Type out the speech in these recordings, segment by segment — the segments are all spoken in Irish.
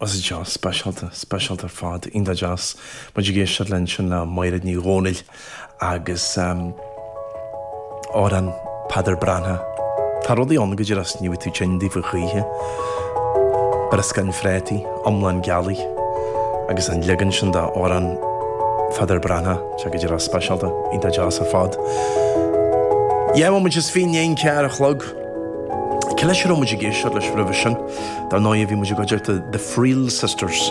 As an teach speisialta, speisialta ar fad, iontach deas. Muid ag éisteacht linn sin le Máiréad Ní Dhomhnaill agus amhrán Peadar Breathnach. Tá rudaí ann go díreach is ní bhíonn tú tinn daofa choíche. Brioscáin phréataí, iomlán gealaí agus an leagan sin de amhrán Pheadair Breathnach, sea go díreach speisialta, iontach deas ar fad. Dhá bhomaite is fiche i ndiaidh 11 a chlog. Cé leis a raibh muid ag éisteacht leis roimhe sin? Dar ndóigh, bhí muid i gcuideachta The Friel Sisters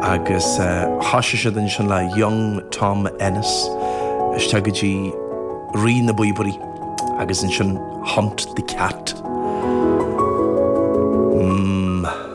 agus thosaigh siad ansin le Young Tom Ennis, isteach go dtí Rí na bPíobairí agus ansin Hunt the Cat. Mmm.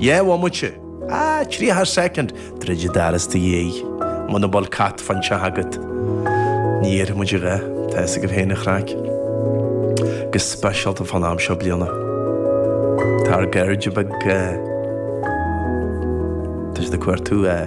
Dhá bhomaite, a, tríocha soicind, druid an doras i do dhiaidh, muna bhfuil cat fán teach agat. Ní déarfaidh muid a dhath, tá fhios agaibh féin an chraic. Go speisialta fán am seo bliana. Tá ár gcairde beaga, tá siad ag cuartú, eh,